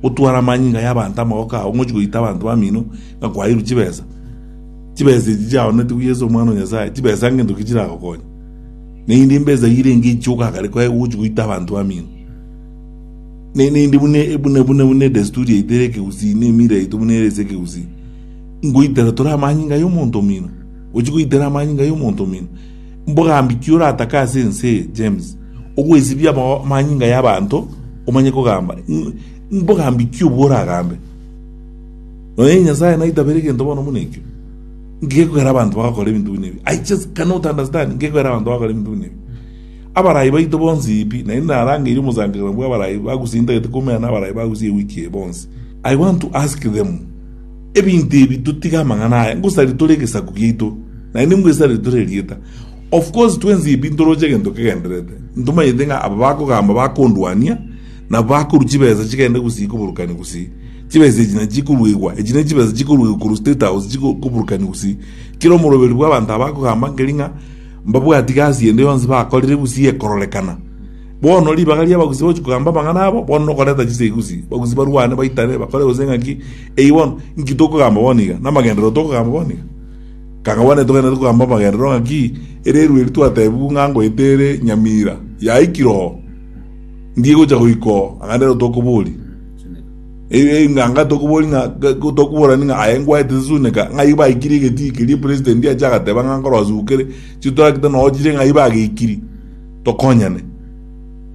gotwara amanyinga y'abanto amaboko ao, ng'ochi goita abanto bamino ng'a kwairwe chibesa, chibesa echi chiaonetigwe Yeso Omwana o Nyasae, chibesa ngento ki chiragokonya? Naende mbesa eyio renge echiuka akare kwae gochi goita abanto bamino. Ne- naende buna e- buna buna buna edesturi yaito ere ekegusii, na emira yaito buna ere ase ekegusii, ngoitera tore amanyinga y'omonto omino? Gochi goitera amanyinga y'omonto omino? Mbogambi ki oratake ase ense eye, James? Ogwesibia amanyinga y'abanto omanye kogamba? Mbogambi ki obwo oragambe? Nonya Nyasae naitabere egento bono buna ekio? Ngekogera abanto bagakora ebinto buna ebi. I just cannot understand, ngekogera abanto bagakora ebinto buna ebi. Abarai baito bonsi pi, naende narangeirie omosangererekano bw'abarai bagusintagete komeana abarai bagusie ewiki eye bonsi. I want to ask them. Ebinto ebi totige amang'ana aya, ngosaria tore egesaku giaito, naende ngwesarere tore erieta. Of course twensi ebi ntoroche egento kegendererete, ntomanyete ng'a aba bakogamba bakondwania, nabo bakorwa chibesa chigende gusii koburokania gusii. Chibesa echi nachi chikoruegwa, echi nechibesa chikoruegwa korwa state house chiko koburokania gusii. Kera omoroberi bw'abanto aba akogamba nkeri ng'a mbabwati gasi ende yonsi bakorire gusii ekororekana. Bono ribaga ri'abagusi bagochia kogamba amang'ana abo, bono nokoreta chisegusii, abagusi barwane, baitane, bakore gose ng'aki. Eyio bono, inki tokogamba bono iga? Namagenderero tokogamba bono iga? Kanga bono netogenderere kogamba amagenderero ng'aki? Ere erua eria twatebiwu ng'a ngoeta ere nyamira, yaikire oo. Ndi egochia goika oo, anga nero tokoboria. Eyio anga tokoboria ng'a, tokoborani ng'a aye ngwaete sesuneka, ng'ai baikirie egetii keria president ache agateba ng'a nkorosugukere, chitoragita noo chire ng'ai bageikiri. tokonyane.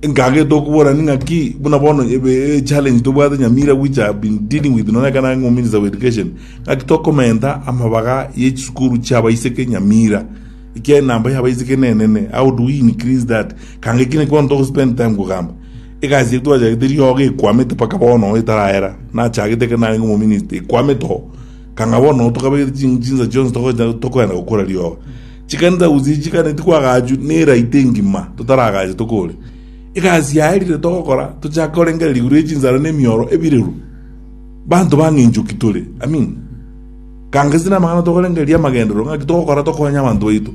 Nkagete okuborani ng'aki buna bono e challenge tobwate nyamira which I have been dealing with nonye ekero nare ominister of education ng'aki tokomenta amabaga ye chisukuru chiabaiseke nyamira ekiagera enamba yabaiseke nenene how do we increase that kanga eki naki bono togospend time kogamba egasi eye twachagete riogo ekwamete mpaka bono etarahera nachagete ekero narenge omominister ekwamete oo kanga bono tokabegete chinsa chionsi tokoenda gokora riogo. Chikanisa gose ichikane tikwagaachwa n'eraito engima totaragache tokore. Egasi yaye riria togokora tochake korengereria igoro ye chinsara na emioro ebireru. Banto bang'enchwa ki tore? Amina. Ganga ase namang'ana tokorengereria amagenderero, ng'aki togokora tokonye abanto baito,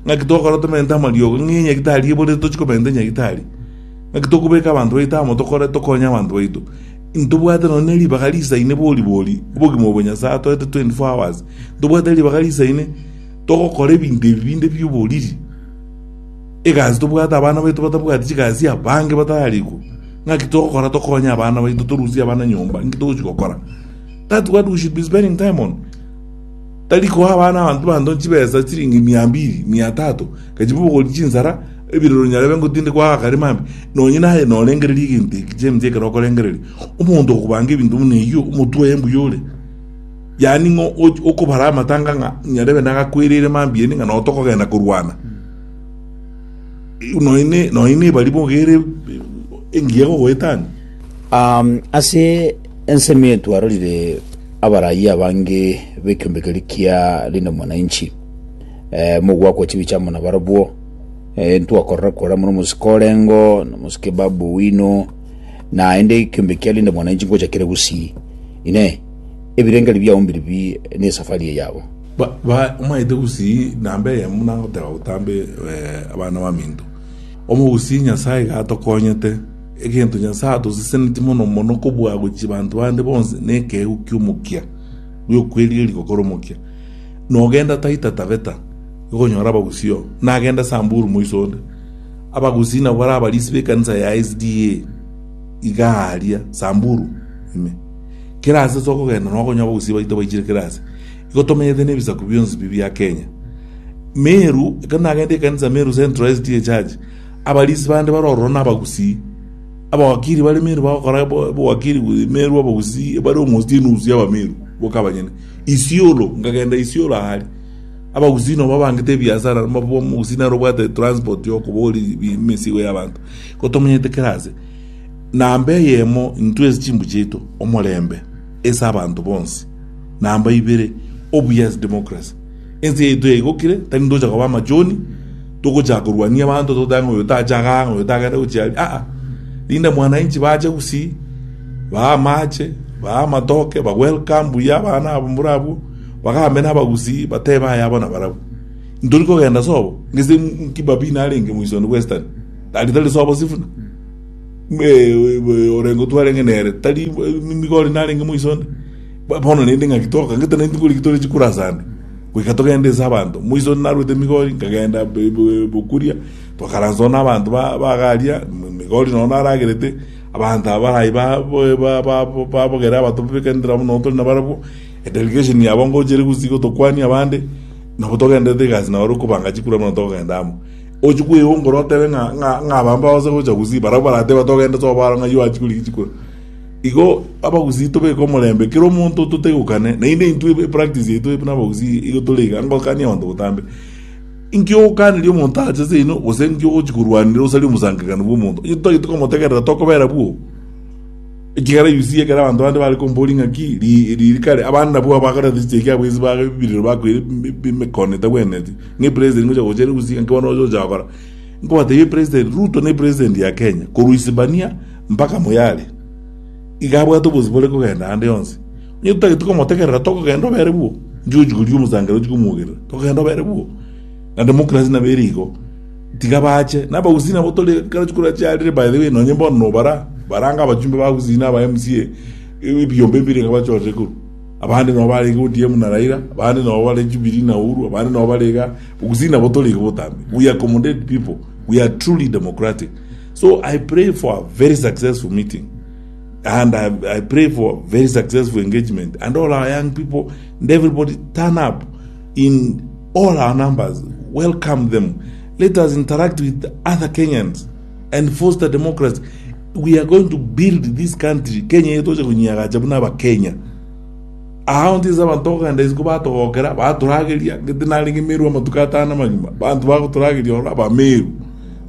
ng'aki togokora tomente amariogo, ng'ai enyagitari eborete tochie komenta enyagitari, ng'aki tokobeka abanto baito amo tokore tokonye abanto baito. Intobwate nonya neribaga riisaine bori bori, obogima obo Nyasae atoete 24 hours, ntobwate ribaga riisaine, Togokora ebinto ebi binde bi'oboriri, egasi tobwate abana baito batabwati chigasi abange batararikwa. Ng'aki togokora tokonye abana baito, torusie abana nyomba? Inki togochia gokora? That what we should be spending time on. Tari koa abana abanto banto chibesa chiringi mia mbiri, mia tatu, gachi bobogori chinsara, ebirero nyarebe ngotindekwa aa akarema mbe. Nonye naye norengereria egento eki James ekero okorengereria, omonto okobanga ebinto buna eyio, omotwe oye mbuya ore. Yaani ng'a okobara amatanga ng'a nyarebe nagakwereire mambia inde ng'a nao tokogenda korwana. Nonya nebari bogere engiya gogoetania. Ase ensemo eye twarorire abarayia abange b'ekeombe keria kia Linda Mwananchi, mogwakwa chibicha amo nabarobwo, ntwakorora kore amo nomosike orengo, nomosike Babu Owino, naende ekeombe kia Linda Mwananchi ngocha kere gusii, inee! ebirengerio biao mbirie nesafari eye yabo. Omanyete gusii namba eyemo nagoteba gotambe abana baminto. Omogusii Nyasae iga atokonyete. Egento Nyasae atosesenetie mono mono kobua gochia banto bande bonsi nekeegu kiomokia giokwerigeria gokora omokia. Nogenda Taita Taveta igonyora abagusii oo. Nagenda Samburu moiso onde. Abagusii nabwo are abarisi bekanisa ya SDA igaa aria Samburu ime. Kera aase ase okogenda na okonyora abagusii baito baichire kera aase, igo tomenyete nebisaku bionsi bi bia Kenya. Meru, ekero nagenda ekanisa Meru Central SDA Church, abarisi bande bare ororo na abagusii. Abawakiri bare Meru bagokora bo- bowakiri bu- Meru abagusii bare almost enusu ya Abameru boka abanyene. Isiolo, nkagenda Isiolo aria, abagusii nabo babangete ebiasara, omogusii nare obwate transport yokoboria bi- emesigo y'abanto. Igo tomenyete kera aase. Namba eyemo intwe ase chimbu chiaito, omorembe ase abanto bonsi. Namba ibere, obuya ase democracy. Ense yaito yaigokire, tari ntocha koba amachoni, togochaka korwania abanto toteba ng'a oyo tache iga, ng'a oyo tagende gochia aria, aa. Rinde mwananchi bache gusii, baa amache, baa amatoke, ba welcome buya abana abo mbura abwo, bagambe na abagusii, batebe aye abo na barabwo. Ntori kogenda sobo, gese Kibabii narenge moisoni bwa Western, tari tari sobo sifuna. orenge twarenge nere tari nigo ore narenge moiso onde, bono rende ng'aki toka, ngete naintwe koriki tore chikurase ande, goika togende ase abanto. Moiso onde narwete migori, nkagenda bokuria, twakaransa na abanto bagaria, migori nonya naragerete, abanto aba baria barai babogere abatobeka nere abwo nonya tore nabarabwo, delegation yabo ngochire gose gotokwania abande, nabo togendererete egasi nabarabwo kobanga chikura buna togenda amo. Ochia kweyongora otebe ng'a ng'a abambe abagosa gocha Gusii, barabwo baratebe bati ogende tobare ng'ai oachia koria egechuko. Igo abagusii tobeke omorembe kera omonto totegokane, naende intwe epractice yaito buna abagusii igo tore iga ngokania abanto botambe. Inki ogokaneria omonto ache ase oino gose inki ogochia korwanera osaria omosangererekani bw'omonto? Onye totagete komotegerera tokobera bwoo. Ekegera gisiya ekero abanto bande bare kombori ng'aki riri kare, abande nabwo bagoretwe chichee kiabo ase ba biriro bakoire b'emekono etagwenereti, ng'a eperesi teri ngocha gocha ere gusii ng'aki bono oche gocha gokora. Nkobatebia eperesi teri, Ruto ne eperesenti ya Kenya korwa Isibania mpaka Moyale, iga abwate obosio bore kogenda ande yonsi. Onye totageti komotegerera togogenda obere bwo, inche gochi koria omosangereria ochi komogerera, togogenda obere bwo. Naende mokurasia nabere igo. Tiga bache. Nabagusii nabo tore kera chiko rache arire by the way nonye bono nobara baranga abachumbe bagusii naba MCA ebiyombe ebire iga bachorire koru. Abande nobo bare iga ODM na Raila, abande nobo bare Jubilee na Uhuru, abande nobo bare iga bogusii nabo tore iga botambe. We accommodate people. We are truly democratic. So I pray for a very successful meeting and I, I pray for very successful engagement and all our young people and everybody turn up In all our numbers, welcome them, let us interact with other Kenyans and foster democracy, we are going to build this country, Kenya eye toche konyiagacha buna abakenya. Aao ntinse abanto okogenda isiko batogokera, baturageria, ngete narenge Meru amatuko atano amagima, abanto bagoturageria ororo abameru,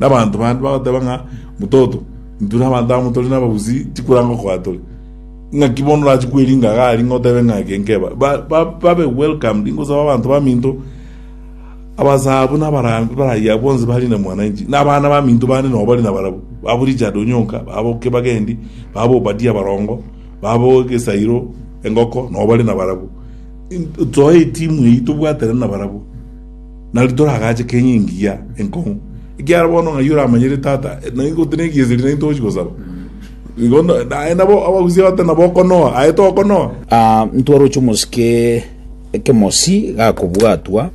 na abanto bande bagoteba ng'a mutoto, intwe na abanto amo tore na abagusii, tikoranga okoa tore. Naki bono orache kweringa iga aria ng'a otebe ng'a eke nkeba. Ba- ba- babe welcomed, ingosaba abanto baminto, abasaa buna abarambe, barayia bonsi bari na mwananchi, na abana baminto bande nabo bari nabarabwo, babo Richard Onyonka, babo Kibagendi, babo Obadia Barongo, babo Gesairo Engoko nabo bari nabarabwo. In- Nsoe etimu eyio tobwaterane nabarabwo, nario toragache Kenya engiya enkong'u, ekiagera bono ng'ai oramanyire tata, naingote negieseri naintwe togochi gosaba. Igo naye nabo abagusia batari na bokonoa, aye tokonoa? Ah, ntwaroche omosike ekemosi gakobwatwa,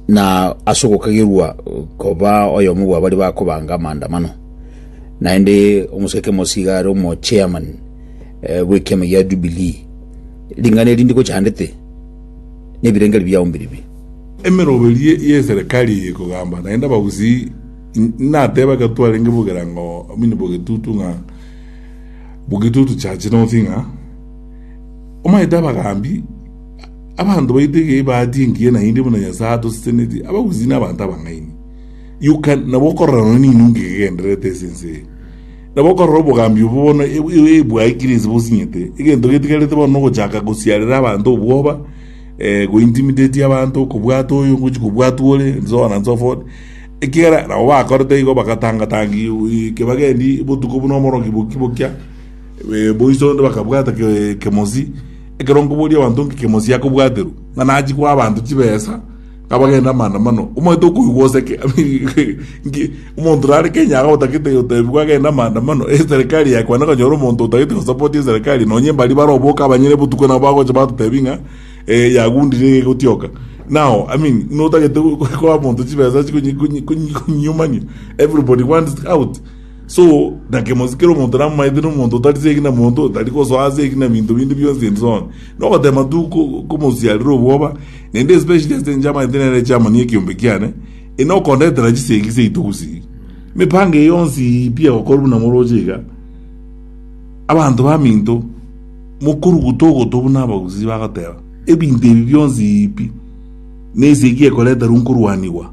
na ase ogokagerwa koba oyomo bwa bari bakobanga amaandamano naende omosike ekemosi iga are omo chairman eh, bw'ekiama gia Jubilee ring'ana eri ndikochandete nebirengeri biao mbiribi emeroberi ye- y'eserekari eye ekogamba naende abagusi Nateba ekero twarenge bogerango omonto bw'egetutu ng'a bw'egetutu chache nonsi ng'a omanyete abagaambi, abanto baito iga ebahati engiya naende buna Nyasae atoseseneti, abagusii na abanto abang'aini. You can nabo okorora nonye ne enungu egegendererete ase ense eye. Nabo okorora obogaambi obwo bono bwaikire ase bosinyete, egento getigarete bono nogochaka gosiarera abanto obwoba, go intimidate abanto, okobwata oyo ngochia kobwatwa ore, and so on and so forth. Ekiagera nabo bakorete igo, bagatanga-tangigwa eke bagendi botuko buna omoroki boki-bokia, boiso onde bakabwata kemosi, ekero nkoboria abanto nki kemosi akobwaterwa, ng'a nachie koa abanto chibesa, ng'a bagende amaandamano. Omanyete okoigwa gose ki? Nki omonto nare Kenya iga otagete gotebigwa agende amaandamano, eserekari yaye kwane okonyora omonto otagete gosapoti eserekari, nonye mbaria bare oboke abanyene botuko nabo bagocha batotebi ng'a. eh, yagundire egegotioka now i mean notagete koa monto chibesa chikonyiumania everybody wants out so nakemosi kero omonto namaete nomonto otari segi na monto otari gosoa segi na binto binde bionsi and so on nogotema tu ko- komosiarera obwoba naende especially ase inche amaete nere chairman ya ekiombe kiane enokondetera chisegi seito gusii mipango eye yonsi pi egokora buna moroche iga abanto baminto Mokoruguta ogoto buna abagusii bagoteba, Ebinto ebi bionsi pi, nense ki ekoreterwa nkorwanigwa?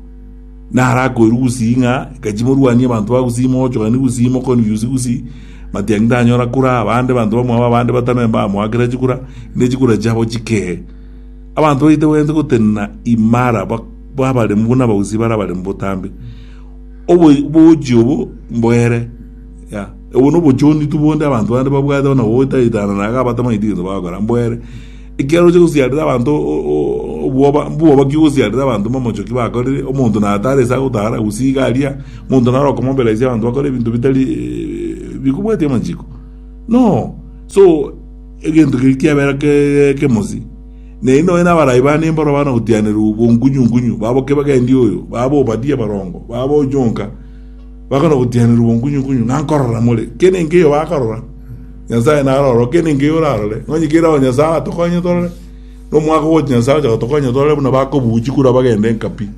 Narakoirwe gusii ng'a gaki morwanie abanto ba gusii mogochokani gusii moconfuse gusii matiangi tanyora kura abande banto bamwabo abande batano mbamoakera chikura ne chikura chiabo chikee. Abanto baite baete gotenena imara babaremu buna abagusii bare abaremu botambe. Obogochi obo mboere. Obwo nobochonitu bonde abanto bande babwate buna goeta ritang'ani na agabata amang'iti gento bagokora. Mbu ere, ekiagera ochia gosiarera abanto obwoba, mbwoba ki ogosiarera abanto mamochoki bakorire? Omonto natare ase agotara, gose iga aria, omonto naro okomombera ise abanto bakore ebinto bitari bikobwatia amachiko? Inoo! So, egento keria kiabera ekemosi. Na eri nonya nabarai bane mboro bana gotianerwa obongunyungunyu, babo kebagendi oyo, babo Obadia barongo, babo Ojonka. Bakana ogotianerwa obonkunyu-nkunyu, ng'a nkorora more. Kera enkeyo bakarora, Nyasae narore, o kera enkeyo orarore, onye kera o Nyasae atokonye torore, na omwaka ogocha Nyasae ocha gotokonya torore buna bakobuuchi kora bagende enkapi.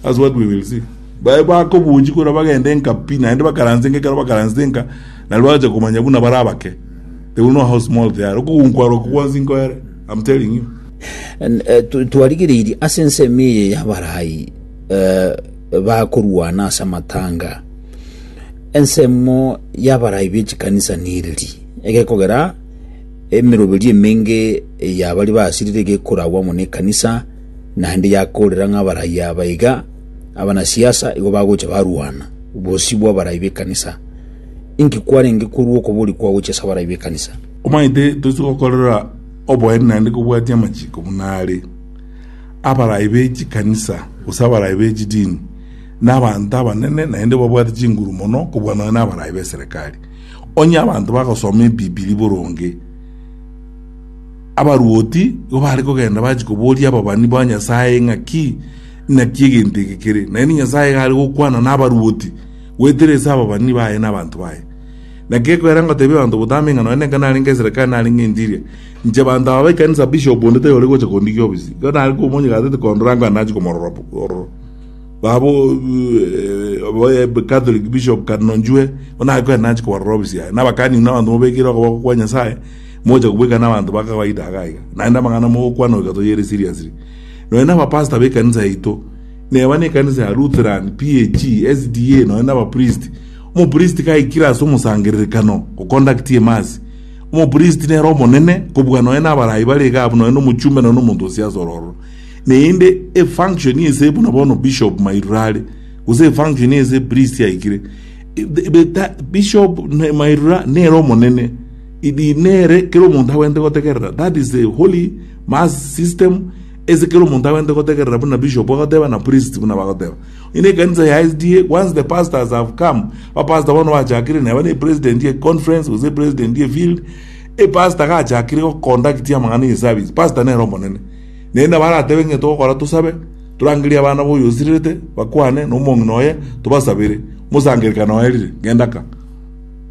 That's what we will see. Baye bakobuuchi kora bagende enkapi, naende bakaranse enka ekero bakaransete enka, nario bagocha komanya buna bare abake. They will know how small they are. Okogunkwa aro okwo gwansi nkoere, I'm telling you. N- eh, tu- twarigereirie ase ensemo eye y'Abarai. bakorwana ase amatanga. Ensemo y'abarai be chikanisa nereri, egekogera emeroberio emenge ya baria basirire egekoragwa amo nekanisa, naende yakorera ng'a abarai aba iga abanasiasa igo bagocha barwana bosio bw'abarai b'ekanisa. Inki kwarenge korwa okobori kwa gochia ase abarai b'ekanisa? Omanyete toise gokorera oboene naende kobwatia amachiko buna are. Abarai be chikanisa, gose abarai be chidini, nabanto abanene, naende babwate chinguru mono kobua nonya nabarai b'eserekari. Onye abanto bagosoma Ebibilia boronge, abaruoti igo bare kogenda bachie koboria ababani ba Nyasae ng'aki naki egento eke kere. Naende Nyasae iga are gokwana nabaruoti goetera ase ababani baye na abanto baye. Naki ekwera ngotebia abanto botambe ng'a nonya nenkana narenge eserekari narenge enchiri, Inche banto aba b'ekanisa bishop onde tari ore gocha kondigia obisio. Ekero nare komonyeka atete kondora ng'a nachi komorora ororo. Baba Catholic bishop Cardinal Njue onare koba nachi kobarora obisio aye. Nabakani buna abanto mobekeire okoboko kwa Nyasaye mocha kobweka n'abanto ba kawaida iga iga. Naende amang'ana mogokwana goika toyere seriously. Nonya naba pastor b'ekanisa yaito. Neba nekanisa ya Lutheran, PAG, SDA nonya naba priest. Omo priest gaikire ase omosangererekano o conduct emass. Omopristi nere omonene kobua nonya nabaraai bare iga abwo nonya nomochumbe nonya nomonto o siasa ororo. Neende efunction ense buna bono bishop mairure are gose efunction ense priest aikire bishop mairura nere omonene idi nere kera omonto abwenerete gotegerera that is the holy mass system ase kera omonto abwenerete gotegerera buna bishop agoteba na priest buna bagoteba. Ng'ina ekanisa ya SDA, once the pastors have come, abapastor bono bachakire neba ne president ye conference gose president ye field, e pastor gachakire go conduct amang'ana ye service, pastor nere omonene. Naende nabo aratebe ng'e togokora tosabe, torangerie abana boyio osirerete, bakwane, na omong'ina oye, tobasabere. Omosangererekano oye rire, genda ka.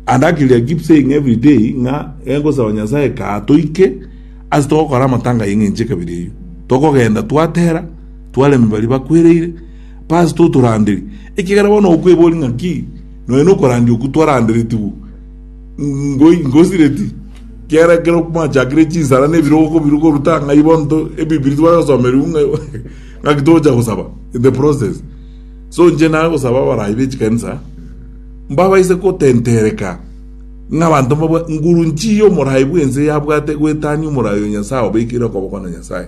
And akiri I keep saying every day, ng'a egosaba Nyasae ka toike, ase togokora amatanga y'eng'encho ekabere eyio. Tokogenda twatera, Twareme baria bakwereire, Pastor otoranderi, ekiagera bono okweboria ng'aki nonya nokorandia okwo twaranderetigwe. Ngoi ngosireti, kiagera ekero mwachakire chinsara na ebiroko biru koruta ng'ai bono to ebibiri twayosomerigwe ng'a ng'aki togocha gosaba in the process. So inche nare gosaba abarai be chikanisa mbabaise gotentereka ng'a abanto mbabwa nguru nchii y'omorai bw'ense yabwate goetania omorai oyo Nyasae obekeire okoboko na Nyasae.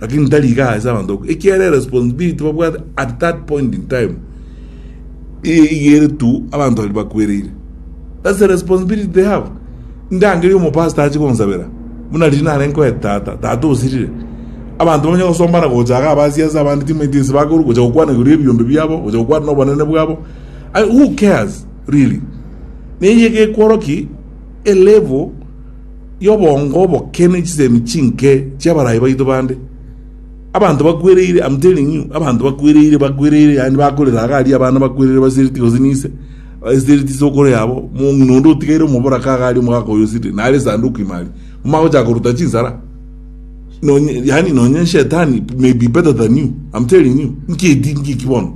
Lakini tari iga ase abanto boka, ekiagera eresponsibility babwate at that point in time eye iga ere to abanto baria bakwereire. That's the responsibility they have. Ndangerie omopastor ache gonsabera, buna riria nare nkoete tata, tata osirire. Abanto bamanye gosombana gocha iga abasiasa abande timaeti ense bakorwa gocha gokwana igoro y'ebiombe biabo, gocha gokwana na obonene bwabo. I- Who cares really? Na eye iga ekworoki a level y'oboongo oboke ne chisemi chinke chi'abarai baito bande. Abanto bakwereire, I'm telling you, abanto bakwereire, bakwereire, yaani bakorera iga aria abana bakwereire basereti gose ninse, basereti isokoro yabo, omong'ina onde otigaire omoboraka iga aria omogaka oyo osirire, nare esanduku ime aria. Momanye gochaka koruta chinsara, nonye, yaani nonye Shetani may be better than you, I'm telling you, nki edi, nki eki bono?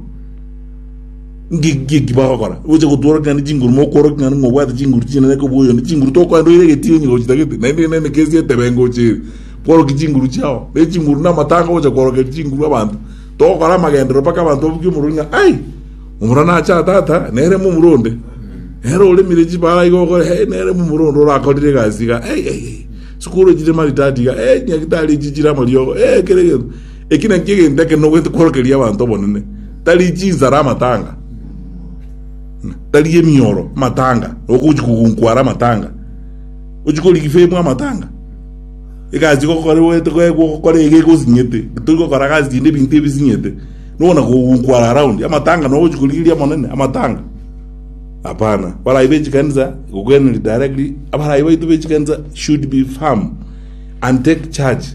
Ng'iki bagokora, gocha gotworokia naende chinguru, mokworokia naende ng'a obwate chinguru chinene eke obwoyo naende chinguru tokoenda oire egetii onye gochitagete, naende ere nende kesi etebengo gocha ere, kworokia chinguru chiao. Ne chinguru namatanga gocha kworokeria chinguru abanto. Togokora amagenderero mpaka abanto babuge omorwori ng'a ai, omorwani acha aa tata, nere momura onde. Nere oremire chibara iga ogokora hei, nere momura onde orakorire egasi iga, ei ei ei, sikuru echi chire maridadi iga, ei, nyagitari echi chire amariogo, ee, kera egento. Eki nakio egento ekenene ogwete kworokeria abanto obonene, tari chinsara amatanga, tari emioro amatanga, nokochi kogunkwa are amatanga, gochi korigia ifemu amatanga. Egasi gokora ogwete gokora iga egosinyete, tori gokora gasi chinde ebinto ebisinyete, nonya na kogunkwa are around amatanga no ogochi korigereria omonene amatanga. Hapana, baria be chikanisa gokwena directly, abaria baito be chikanisa should be firm and take charge.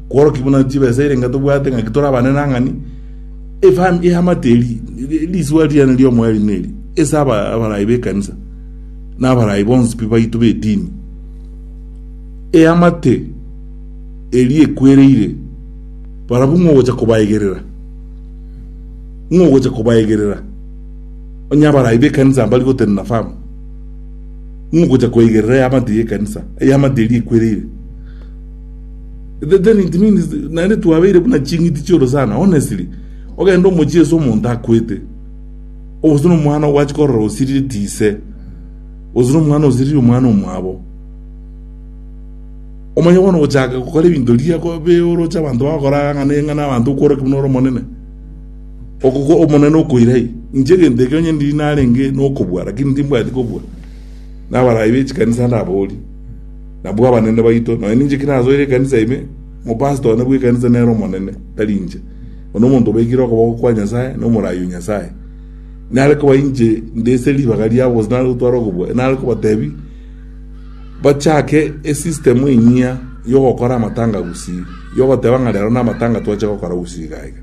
Kworokia buna chibesa eire ng'a tobwate ng'aki tore abanenang'ani, efam- eamate eri, ri- risuba riane ri'omoeri neri, ase aba- abarai b'ekanisa, na abarai bonsi pi baito b'etini. Eamate eri ekwereire, barabwo ng'o ogocha kobaegerera? Ng'o ogocha kobaegerera? Onye abarai b'ekanisa mbari gotenena fam, ng'o ogocha koegerera eamate y'ekanisa, eamate eri ekwereire? Then it means naende twabeire buna ching'iti chioro sana honestly. Ogenda omochie ase omonto akwete. Ogose no omwana ogwachi korora osiriri ti ise. Ogose no omwana osiriri omwana omwabo. Omanye bono gochaka gokora ebinto riria kobe oroche abanto bagokora ng'a ne ng'a na abanto okworwa ki buna ore omonene. Okoko omonene okoira yi. Inche egento ekio onye ndiri narenge nokobua lakini timbwati kobua. Na abarai be chikanisa ndabaorie. nabwo abanene baito. Nonya ninche ki nasoire ekanisa ime, omopastor one bw'ekanisa nere omonene, tari inche. Oyo nomonto obekire okoboko kwa Nyasae, nomoraai o Nyasae. Nare koba inche nde ase ribaga riabo gose nare gotwara okobua, nare kobatebi bachake esystem enyia yogokora amatanga gusii, yogoteba ng'a rero namatanga twache gokora gusii iga iga.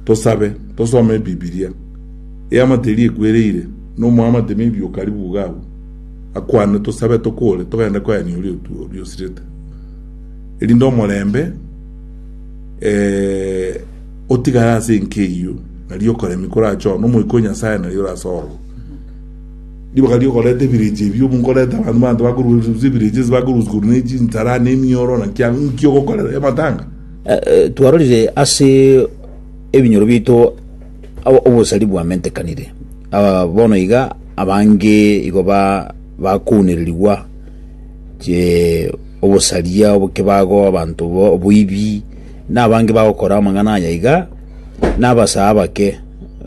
Tosabe, tosome ebibiria, eamate eria ekwereire, nomoamate maybe okaribu iga abwo. Akwane, tosabe tokore, togende koyania oria oriosirete, erinde omorembe otigare ase enka eyio, na riokoremia korache oo, na Omoika o Nyasae nario orase ororo. Ribaga riokoreta ebirecha ebio, nkoreta abanto banto bakorusia ebirecha ase bakorusia korwa ne chinsara, ne emioro, naki ang'o, nki ogokorera amatanga? Twarorire ase ebinyoro biaito. Ao obosari bwamentekanire, aa, bono iga abange igo ba bakounererigwa che obosaria obokebago abanto bo oboibi na abange bagokora amang'ana aya iga na abasaa abake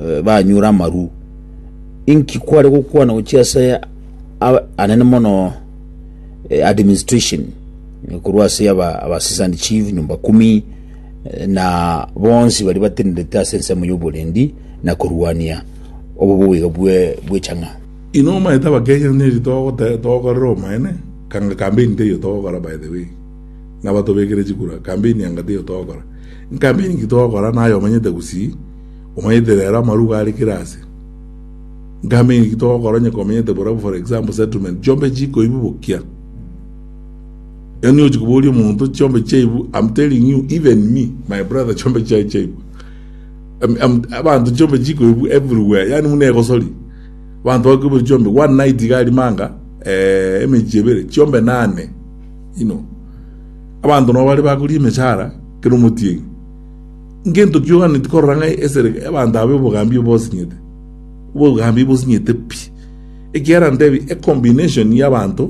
eh, banyure amaru inki kware gokwana gochia ase a- anene mono eh, administration eh, korwa ase aba abasisani chief nyumba kumi na bonsi baria batenenete ase ensemo y'oborendi na korwania oboboiga bwe bwechang'a. Inwe omaete abakenya neri togotebia togokorera omoene kanga campaign teiyo togokora by the way naba tobekire chikura campaign anga teiyo togokora campaign ki togokora naye omanyete gusii omanyete rero amaruga are kira ase campaign ki togokora onye komanyete bora for example settlement chionbe chikoibubokia Yaani ochi koboria omonto chiombe chiaibu, I'm telling you, even me, my brother chiombe chiaye chiaibu. I'm- I'm- Abanto chiombe chikoibu everywhere, yaani muna egosori. Abanto bakoibire chiombe, one night iga arimanga, eh, emechie ebere, chiombe nane, you know. Abanto nabo bare bakoria emechara, kera omotienyi. Ngento kioganeti korora ng'a esere abanto abe obogambi obosinyete. Obogambi bosinyete pi. Ekiagera ntebi, a combination y'abanto,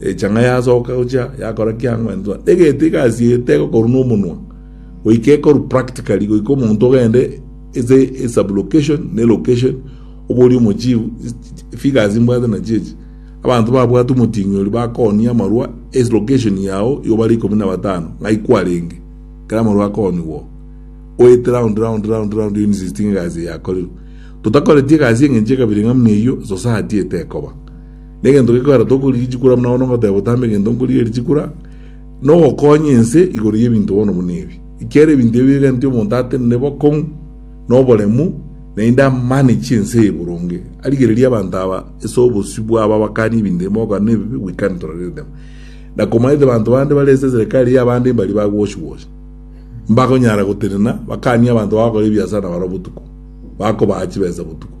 Echanga yasoka gochia yakora kiang'wentwa, egento egasiete egokorwa nomonwa, goika ekorwa practically, goika omonto ogende ase esublocation ne location obori omochifu figures mbwate na chiechi abanto babwate omoting'i oria bakonia amarwa ase location yao igo bare ikomi na batano ng'ai kwarenge kera amarwa akonigwa oete round round round round you insisting egasi yakorerwe totakoreti egasi eng'encho ekabere ng'a muna eyio society etekoba Negento gekoera tokorigia echikura buna bono ngoteba otambe egento nkorigia richikura, nogokonya ense igoro y'ebinto bono buna ebi. Ekiagera ebinto ebi bigentio omonto atenene bokong'u na oboremu, naende amane chi'ense eye boronge. Arigererie abanto aba ase obosio bwabo abakanie ebinto ebi mogoka na ebibe goikani tororerete amo. Na komanyete banto bande bare ase eserekari y'abande mbaria ba gwosiwosi, mbakonyara gotenena bakanie abanto bagokora ebiasara nabarabwo botuko, bakobaa chibesa botuko.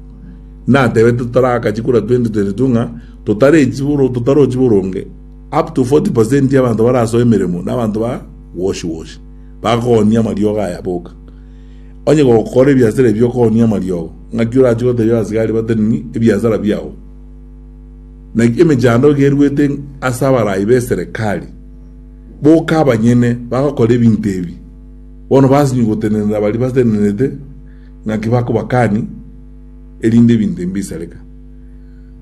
natebete totaragachi kura 2022 ng'a totarochi boronge up to 40% y'abanto barasoe emeremo nabanto ba wash wash bakogonia amariogo aya boka. Onye gokora ebiasara ebi okogonia amariogo ng'aki orache gotebia abasigari bate nini ebiasara biao. Na emechando iga eruete ase abarai b'eserekari boka abanyene bagokora ebinto ebi bono basinywe gotenenera baria batenenete. Naki bakobakani erinde ebinto ebi mbisareka.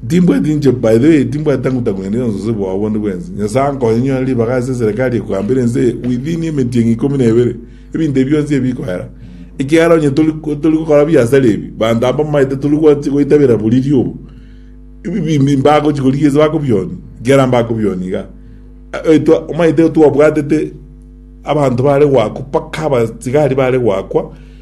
Timbwati inche, by the way, timbwati tangu tangu naende obosose bwao bonde bwensi. Nyasae ankonye nyore ribaga ase eserekari ye koambera ense eye within emetienyi ikomi na ebere, ebinto ebi bionsi ebi bikoera. Ekiagera onye tori tori gokora biasara ebi, banto aba mbaete tori gwa- goitabera boriri obo, ebi bimbi mbagochi korigia ase bakobionia, ekiagera mbakobionia iga. Eh, eh, twa- omaete twabwatete abanto bare goakwa, mpaka abasigari bare goakwa,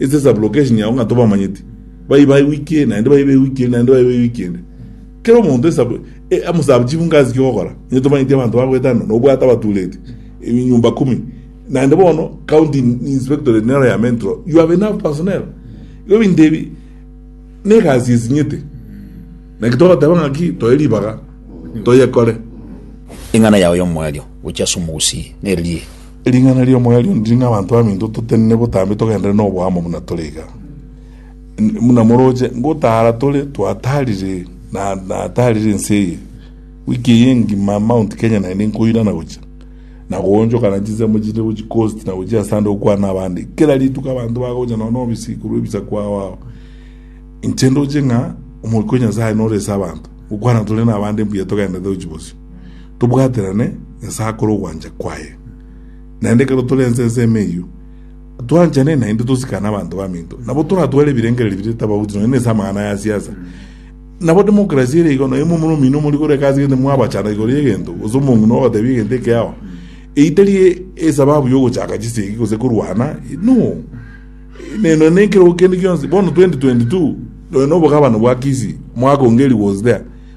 Ase sublocation yao ng'a tobamanyeti, bayi baye week eye, naende baye be week ende, naende baye be week ende. Kera omonto esub, e, amo sub chief ngasi ki ogokora. Inye tomanyeti abanto bagoetano, na obwate abatureti, e, nyumba kumi. Naende bono, county in- inspectorate nero ya mentro, you have enough personnel. Igo ebinto ebi, na egasi esinyete. Naki togoteba ng'aki, toe ribaga, toyekore. Eng'ana yao y'omoerio gochia ase omogusii nere riiri. Ring'ana ri'omoyo ri'onde riri ng'a abanto baminto totenene botambe togenderere noboamo buna tore iga. N- Buna moroche, ngotaara tore twataarire na nataarire ense eye. Wiki eye engima Mount Kenya naende nkoirana gochia na koonchokana chinsemo chinde gochia coast na gochia ase ande gokwana abande. Kera rituko abanto bagocha nonya nobisi korwa ebisaku ao ao. Inche ndoche ng'a omoika o Nyasaye nore ase abanto, gokwana tore nabande mbuya togenderete gochia bosio. Tobwaterane Nyasae akore ogwancha kwaye. Naende ekero tore ense ensemo eyio, twanchane naende tosikane abanto baminto. Nabo toratware ebirengererio biria tabauti nonya nese amang'ana ya siasa. Nabo democracy ere igo nonya omomura omino omori kore egasi gete mwabachana igoro y'egento gose omong'ina ogotebia egento ekeao. Eyio tari esababu ya ogochaka chisegi gose korwana, no. Neno nekerogo kende gionsi. Bono 2022 nonya na obogabana bwa Kisii, mwaka onge rigo was there.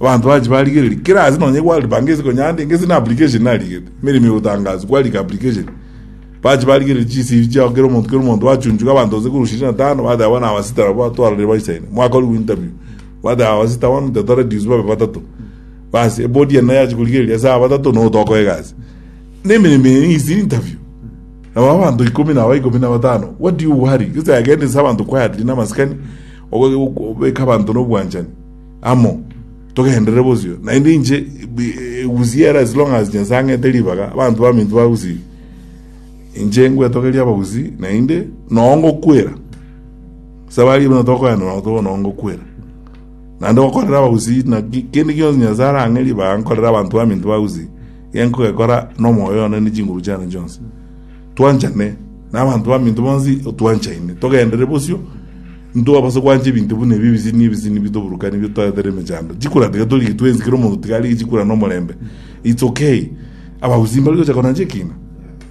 Abanto bache barigereria, kera ase nonye World Bank ase konya ande, gese na application narigete, emeremo egotangaswa, kwarika application, bache barigereria chi CV chiao kera omonto kera omonto, bachunchuka abanto gose korwa ishirini na tano, bateba bono aba sita nabo batwarorire baisaine, mwakorigwa interview, bateba aba sita bono to reduce babe batato, basi ebodi ende naye yachi korigereria ase aba batato nigo tokoa egasi. Na emeremo eye ng'isi interview, nabo abanto ikomi nabo ikomi na batano, what do you worry? Gese agenda ase abanto quietly na amasikani, ogo- ogo- obeka abanto na obwanchani, amo, togenderere bosio, naende inche egusie ere as long as Nyasae ang'ete ribaga, abanto baminto bagusibia. Inche ngwetogeria abagusii, naende noo ngokwera. Sabari buna tokoenda nabo toba noo ngokwera. Naende gokorera abagusii naki kende gionsi Nyasae arang'e ribaga nkorere abanto baminto bagusii, iga nkogekora na omoyo one ne chinguru chiane chionsi. Twanchane, na abanto baminto bonsi otwanchaine, togenderere bosio, Ntobase gwancha ebinto buna ebi ebisini ebisini nibitoburukane ebio totaete rende emechando. Chikura tiga torige twensi kera omonto tiga arige chikura na omorembe. It's okay. Abagusii mbari gocha korancha ekina.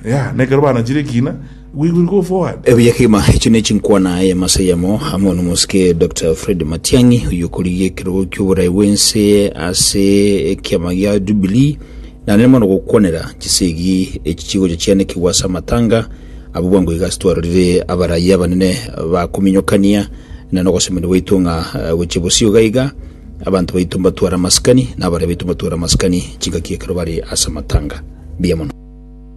Yeah, na ekero baranchire ekina, we will go forward. Ebuya kegima, echi ne chinkwana eyemo ase eyemo, amo nomosike Doctor Fred Matiang'i, oyio okorigia ekerogo ki'oborai bw'ense ase ekiama gia Jubilee, nare mono gokwanera chisegi echi chigocha chianekigwa ase amatanga, Abwo bwango iga ase twarorire abarayia abanene bakominyokania, na nogosemeria gwaito ng'a gochia bosio iga iga abanto baito mbatware amasikani, na abaraia baito mbatware amasikani chingaki ekero bare ase amatanga. Mbuya mono.